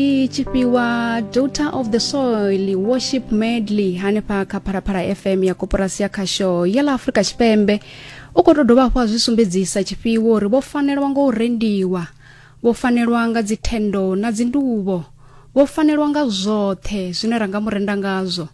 i tshi fhiwa daughter of the soil worship medley hanefha kha pharaphala fm ya koporasi ya khasho ya ḽa afurika tshipembe u khou tou dovha hafhu a zwi sumbedzisa tshifhiwo uri vho fanelwa nga u rendiwa vho fanelwa nga dzithendo na dzinduvho vho fanelwa nga zwoṱhe zwine ra nga mu renda ngazwo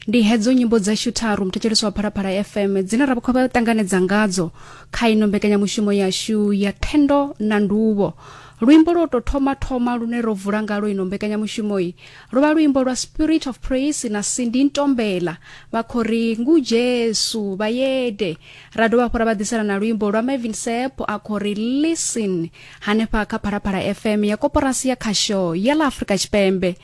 ndi hedzo nyimbo dzashu tharu muthetshelesi wa phalaphala fm dzine ra khou vha ṱanganedza ngadzo kha ino mbekanyamushumo yashu ya thendo na nduvho luimbo lwo tou thoma thoma lune ro vula ngalo ino mbekanyamushumoyi lwo vha luimbo lwa spirit of praise na sindi ntombela vha khou ri ngu jesu vhayede ra dovha hafhu ra vha ḓisela na luimbo lwa mavin sep a khou ri listen hanefha kha phalaphala fm ya koporasi ya khasho ya ḽa afrika tshipembe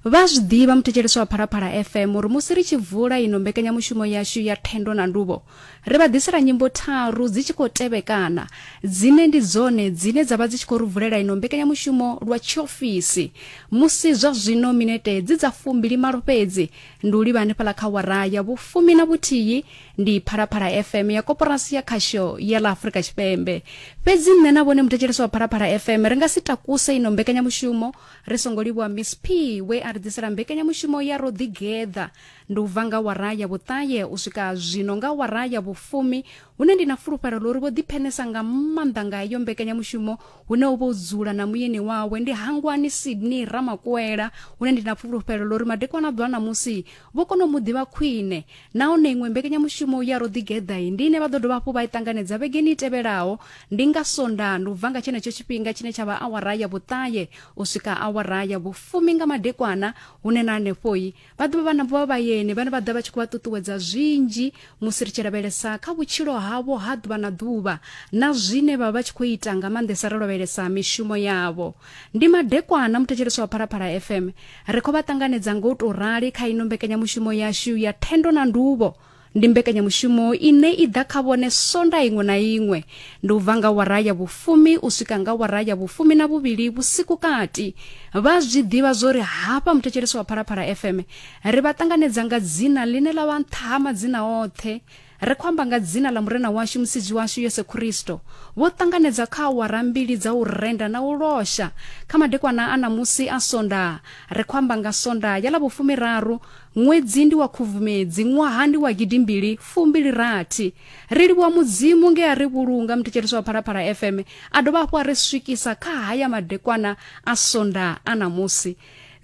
Vha a zwi ḓivha muthetshelesi wa Phalaphala FM uri musi ri tshi vula ino mbekanyamushumo yashu ya Thendo na Nduvho, ri vha ḓisela nyimbo tharu dzi tshi khou tevhekana, dzine ndi dzone dzine dza vha dzi tshi khou ri vulela ino mbekanyamushumo lwa tshiofisi. Musi zwa zwino minete dzi dza fumbili malo fhedzi, ndi u livha hanefhala kha wara ya vhufumi na vhuthihi, ndi Phalaphala FM ya Koporasi ya Khasho ya ḽa Afrika Tshipembe. Fhedzi nṋe na vhone muthetshelesi wa Phalaphala FM ri nga si takuse ino mbekanyamushumo ri songo livhuwa miss p we a ri ḓisela mbekanyamushumo ya ro ḓigeḓa ndi u bva nga wara ya vhuṱaye u swika zwino nga wara ya vhufumi hune ndi na fulufhelo ḽo ri vho ḓiphenesa nga maanḓa nga iyo mbekanyamushumo hune u vha u dzula na muyeni wawe ndi hangwani sydney ramakwela hune ndi na fulufhelo ḽo ri madekwana ḓwa ṋamusi Vho kona u mu ḓivha khwine, nahone iṅwe mbekanyamushumo ya Ro Ḓigeḓai ndi ine vha ḓo dovha hafhu vha i ṱanganedza vhegeni i tevhelaho, ndi nga Sondaha, ndi u bva nga tshenetsho tshifhinga tshine tsha vha awara ya vhuṱahe u swika awara ya vhufumi nga madekwana, hune na hanefho-i vha ḓo vha vha na vhavhayeni vhane vha ḓa vha tshi khou vha ṱuṱuwedza zwinzhi Musi ri tshi lavhelesa kha vhutshilo havho ha ḓuvha na ḓuvha na zwine vha vha tshi khou ita nga maanḓesa ri lavhelesa mishumo yavho. Ndi madekwana muthetshelesi wa Phalaphala FM ri khou vha ṱanganedza nga u tou rali kha ino mbekanyamushumo yashu ya Thendo na Nduvho. Ndi mbekanyamushumo ine i ḓa kha vhone sonda iṅwe na iṅwe. Ndi u bva nga wara ya vhufumi u swika nga wara ya vhufumi na vhuvhili vhusiku kati. Vha zwi ḓivha zwori hafha muthetshelesi wa Phalaphala FM Ri vha ṱanganedza nga dzina ḽine ḽa vha nṱha ha madzina oṱhe. Ri khou amba nga dzina ḽa Murena washu Musidzi washu Yesu Kristo. Vho ṱanganedza kha awara mbili dza u renda na u losha. Kha madekwana a ṋamusi a Sondaha, ri khou amba nga Sondaha ya ḽa vhufumiraru, ṅwedzi ndi wa Khubvumedzi, ṅwaha ndi wa gidimbili fumbili rathi. Ri livhuwa Mudzimu nge a ri vhulunga muthetshelesi wa Phalaphala FM a dovha hafhu a ri swikisa kha haya madekwana a Sondaha a ṋamusi.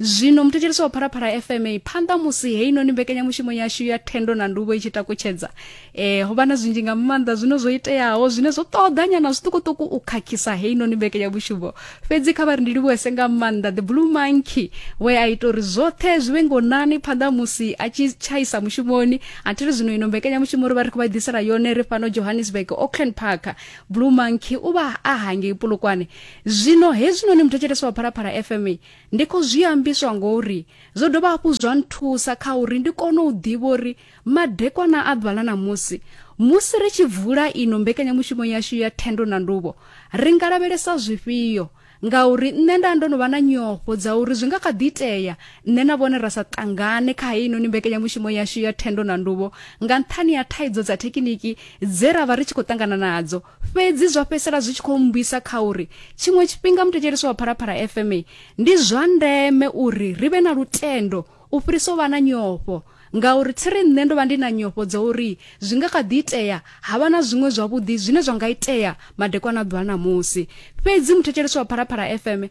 zwino muthetshelesi wa pharapharah fma phanḓa musi heinoni mbekanyamushumo yashu ya thendo na nduvho i tshi takutshedza um ho vha na zwinzhi nga maanḓa zwine zwo iteaho zwine zwo ṱoḓanyana zwiṱukuṱuku u khakhisa heinoni mbekanyamushumo fhedzi kha vha ri ndi livhuwese nga maanḓa the blue monkey we a ita uri zwoṱhe zwi vhe ngonani phanḓa musi a tshi tshaisa mushumoni athiri zwino ino mbekanyamushumo ri vha ri khou vha ḓisela yone ri fhano johannesburg auckland park blue monkey u vha a hangei polokwane Zwino hezwinoni muthetshelesi wa Phalaphala FM ndi khou zwi ambiswa ngori zwo dovha hafhu zwa nthusa kha uri ndi kone u ḓivha uri madekwana a ḓuvha ḽa ṋamusi musi ri tshi bvula ino mbekanyamushumo yashu ya thendo na nduvho ri nga lavhelesa zwifhio ngauri nṋe nda ndo no vha na nyofho dza uri zwi nga kha ḓi itea nṋe na vhone ra sa ṱangane kha heinoni mbekanyamushumo yashu ya thendo na nduvho nga nṱhani ha thaidzo dza thekiniki dze ra vha ri tshi khou ṱangana nadzo Fhedzi zwa fhedzisela zwi tshi khou mmbwisa kha uri tshiṅwe tshifhinga muthetshelesi wa Phalaphala FM ndi zwa ndeme uri ri vhe na lutendo u fhirisa u vha na nyofho ngauri thi ri nṋe ndo vha ndi na nyofho dza uri zwi nga kha ḓi itea ha vha na zwiṅwe zwavhuḓi zwine zwa nga itea madekwana ḓuvha ṋamusi fhedzi muthetshelesi wa Phalaphala FM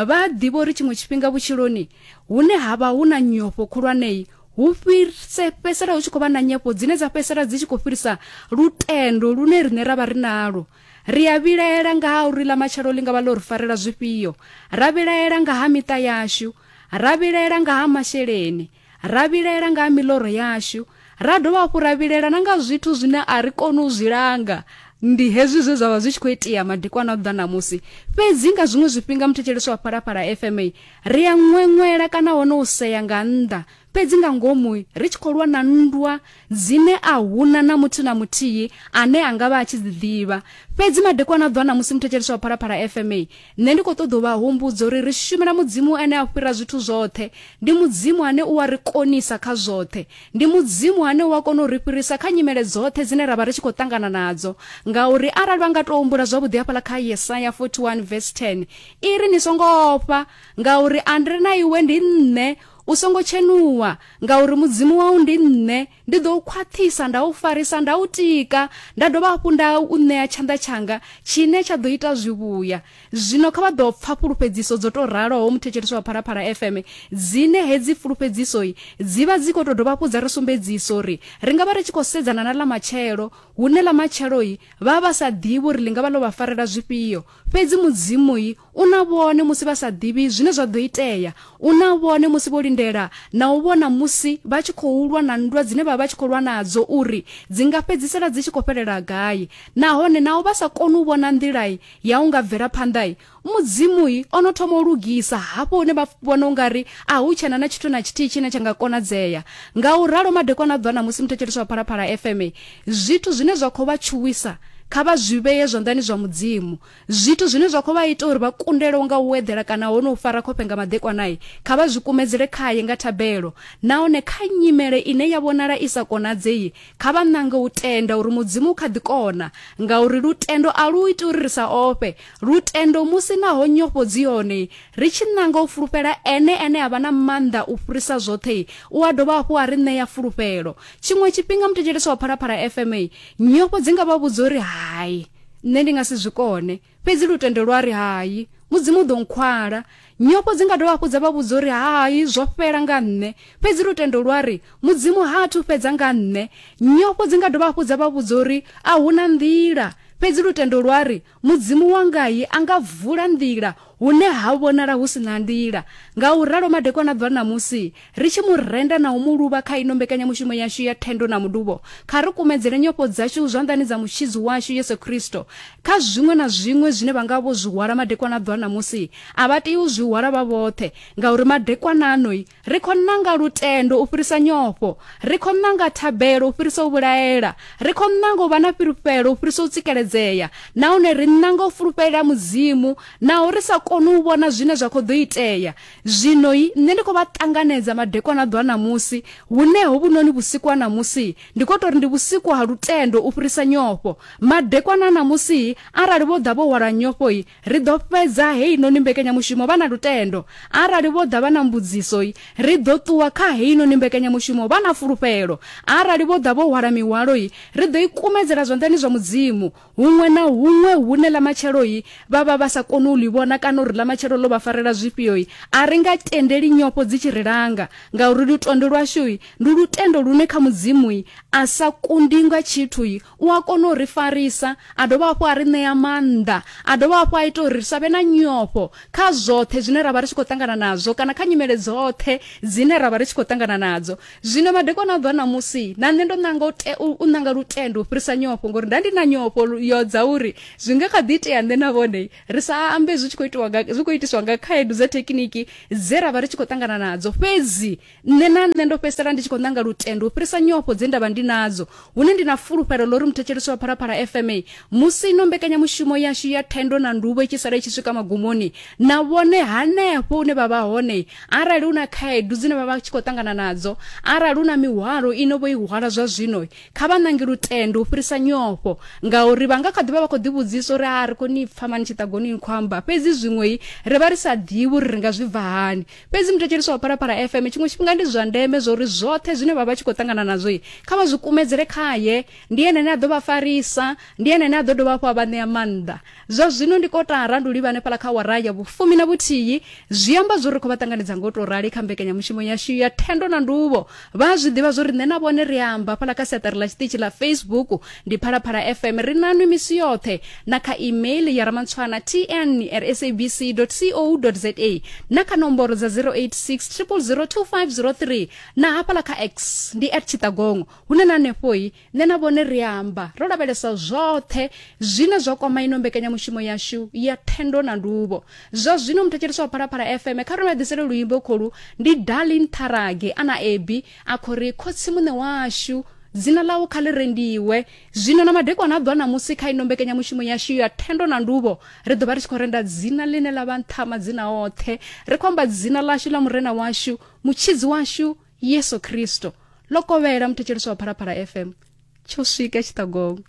vha a ḓivha uri tshiṅwe tshifhinga vhutshiloni hune ha vha hu na nyofho khulwanei hu fhirse fhedzisela hu tshi khou vha na nyefho dzine dza fhedzisela dzi tshi khou fhirisa lutendo lune riṋe ra vha ri nalo ri a vhilaela nga ha uri ḽa matshelo ḽi nga vha ḽo ri farela zwifhio ra vhilaela nga ha miṱa yashu ra vhilaela nga ha masheleni ra vhilaela nga ha miḽoro yashu ra dovha hafhu ra vhilaela na nga zwithu zwine a ri koni u zwi langa ndi hezwi zwe zwa vha zwi tshi khou itea madekwana a ḓa ṋamusi fhedzi nga zwiṅwe zwifhinga muthetshelesi wa phalaphala fma Ri a ṅweṅwela kana hone u sea nga nnḓa, fhedzi nga ngomu ri tshi khou lwa na nndwa dzine a huna na muthu na muthihi ane a nga vha a tshi dzi ḓivha. Fhedzi madekwana a ḓuvha na musi muthetshelesi wa Phalaphala FMA, nṋe ndi khou ṱoḓa u vha humbudza uri ri shumela Mudzimu ane a fhira zwithu zwoṱhe. Ndi Mudzimu ane u a ri konisa kha zwoṱhe. Ndi Mudzimu ane u a kona u ri fhirisa kha nyimele dzoṱhe dzine ra vha ri tshi khou ṱangana nadzo. Ngauri arali vha nga tou humbula zwavhuḓi hafhaḽa kha Yesaya 41 vesi 10, i ri ni songo ofha ngauri a ndi ri na iwe ndi nṋe u songo tshenuwa ngauri mudzimu wau ndi nṋe ndi ḓo u khwaṱhisa nda u farisa nda u tika nda dovha hafhu nda u ṋea tshanḓa tshanga tshine tsha ḓo ita zwivhuya zwino kha vha ḓo pfa fhulufhedziso dzo tou raloho muthetshelesi wa phalaphala fm dzine hedzi fhulufhedzisoi dzi vha dzi khou tou dovha hafhu dza ri sumbedzisa uri ri nga vha ri tshi khou sedzana na ḽa matshelo hune ḽa matsheloi vha vha sa ḓivhi uri ḽi nga vha ḽo vha farela zwifhio Fhedzi Mudzimu u na vhone musi vha sa ḓivhi zwine zwa ḓo itea. U na vhone musi vho lindela na u vhona musi vha tshi khou lwa na nndwa dzine vha vha tshi khou lwa nadzo uri dzi nga fhedzisela dzi tshi khou fhelela gai. Nahone naho vha sa koni u vhona nḓila ya u nga bvela phanḓa, Mudzimu o no thoma u lugisa hafho hune vha vhona u nga ri a hu tshena na tshithu na tshithihi tshine tsha nga konadzea. Nga u ralo, madekwana a ḓuvha na musi muthetshelesi wa Phalaphala FM Zwithu zwine zwa khou vha tshuwisa kha vha zwi vhee zwanḓani zwa Mudzimu. Zwithu zwine zwa khou vha ita uri vha kundelwe nga u eḓela kana ho no u fara khofhe nga maḓekwana, kha vha zwi kumedzele khae nga thabelo. Nahone kha nyimele ine ya vhonala i sa konadzei, kha vha ṋange u tenda uri Mudzimu u kha ḓi kona, ngauri lutendo a lu iti uri ri sa ofhe. Lutendo, musi naho nyofho dzi hone, ri tshi ṋanga u fulufhela Ene ane a vha na maanḓa u fhirisa zwoṱhe, u a dovha hafhu a ri ṋea fulufhelo. tshiṅwe tshifhinga muthetshelesi wa phalaphala fma nyofho dzi nga vha vhudza uri hai nṋe ndi nga si zwi kone fhedzi lutendo lwa ri hai mudzimu u ḓo nkhwala nyofho dzi nga dovha hafhu dza vha vhudza uri hai zwo fhela nga nṋe fhedzi lutendo lwa ri mudzimu ha athu fhedza nga nṋe nyofho dzi nga dovha hafhu dza vha vhudza uri a hu na nḓila fhedzi lutendo lwa ri Mudzimu wangai a nga vula nḓila hune ha vhonala hu si na nḓila. Ngauralo, madekwana a bva ṋamusi, ri tshi mu renda na u mu luvha kha ino mbekanyamushumo yashu ya thendo na mudubo, kha ri kumedzele nyofho dzashu zwanḓani dza Mutshidzi washu Yesu Kristo. Kha zwiṅwe na zwiṅwe zwine vha nga vho zwi hwala madekwana a bva ṋamusi, a vha tei u zwi hwala vha vhoṱhe, ngauri madekwana ano ri khou ṋanga lutendo u fhirisa nyofho ri khou ṋanga thabelo u fhirisa u vhulaela ri khou ṋanga u vha na fhulufhelo u fhirisa u tsikeledzea nahone ri ṋanga u fulufhelela mudzimu naho ri sa koni u vhona zwine zwa khou ḓo itea zwinoi nṋe ndi khou vha ṱanganedza madekwana ḓo a ṋamusi hune hovhunoni vhusiku ha ṋamusi ndi khou tou ri ndi vhusiku ha lutendo u fhirisa nyofho madekwana a ṋamusi arali vho ḓa vho hwala nyofhoi Ri ḓo fhedza heinoni mbekanyamushumo vha na lutendo. Arali vho ḓa vha na mbudziso, ri ḓo ṱuwa kha heinoni mbekanyamushumo vha na fulufhelo. Arali vho ḓa vho hwala mihwalo, ri ḓo i kumedzela zwanḓani zwa Mudzimu. Huṅwe na huṅwe hune Ḽamatshelo vha vha vha sa koni u ḽi vhona kana uri Ḽamatshelo ḽo vha farela zwifhio, a ri nga tendeli nyofho dzi tshi ri langa, ngauri lutendo lwashu ndi lutendo lune kha Mudzimu a sa kundi nga tshithu u a kona u ri farisa a dovha hafhu a ri ṋea maanḓa a dovha hafhu a ita uri ri sa vhe na nyofho kha zwoṱhe zwine ra vha ri tshi khou ṱangana nazwo kana kha nyimele dzoṱhe dzine ra vha ri tshi khou ṱangana nadzo zwino madekwana a bva ṋamusi na nṋe ndo ṋanga u ṋanga lutendo u fhirisa nyofho ngori nda ndi na nyofho yo dza uri zwi nga kha ḓi itea nṋe na vhone ri sa ambe zwi tshi khou itiwa zwi khou itiswa nga khaedu dza thekiniki dze ra vha ri tshi khou ṱangana nadzo fhedzi nṋe na nṋe ndo fhedzisela ndi tshi khou ṋanga lutendo u fhirisa nyofho dze ndavha ndi nadzo hune ndi na fulufhelo ḽo ri muthetshelisi wa phalaphala fma musi ino mbekanyamushumo yashu ya thendo na nduvho i tshi sala i tshi swika magumoni na vhone hanefho une vha vha hone arali hu na khaedu dzine vha vha tshi khou ṱangana nadzo arali hu na mihwalo ino vho i hwala zwa zwino kha vha ṋange lutendo u fhirisa nyofho ngauri vha nga kha ḓivha vha khou ḓivhudzisa uri a ri koni pfa mani tshiṱagoni ni khou amba fhedzi zwiṅwei ri vha ri sa ḓivhi uri ri nga zwi bva hani fhedzi muthetshelesi wa pharapara fm tshiṅwe tshifhinga ndi zwa ndeme zwauri zwoṱhe zwine vha vha tshi khou ṱangana nazwo kha vha zwi kumedzele khaye ndi ene ane a ḓo vha farisa ndi ene ane a ḓo dovha hafhu a vha ṋea maanḓa zwa zwino ndi kotara ndi u livha hanefhala kha wara ya vhufumi na vhuthihi zwi amba zwo ri khou vha ṱanganedza ngo tou rali kha mbekanyamushumo yashu ya thendo na nduvho vha a zwi ḓivha zwo ri nṋe na vhone ri amba hafhaḽa kha siaṱari ḽa tshiṱitshi ḽa facebook ndi phalaphala fm ri nanwi misi yoṱhe na kha email ya ramantswana tn at sabc co za na kha nomboro dza 086 0002503 na hafhaḽa kha x ndi at tshiṱagongo hune na hanefhoi Nṋe na vhone ri amba ro lavhelesa zwoṱhe zwine zwa kwama ino mbekanyamushumo yashu ya thendo na nduvho. Zwa zwino muthetshelesi wa Phalaphala FM kha ri vha ḓisele luimbo kholu ndi Darlin Tharage ana Ebi a khou ri khotsi muṋe washu dzina ḽau kha ḽi rendiwe. Zwino na madekwana a ḓwa ṋamusi kha ino mbekanyamushumo yashu ya thendo na nduvho ri ḓo vha ri tshi khou renda dzina ḽine ḽa vha nṱha madzina oṱhe. Ri khou amba dzina ḽashu ḽa Murena washu, Mutshidzi washu, yesu kristo ḽo kovhela muthetshelesi wa phalaphala fm tsho swika tshiṱagongo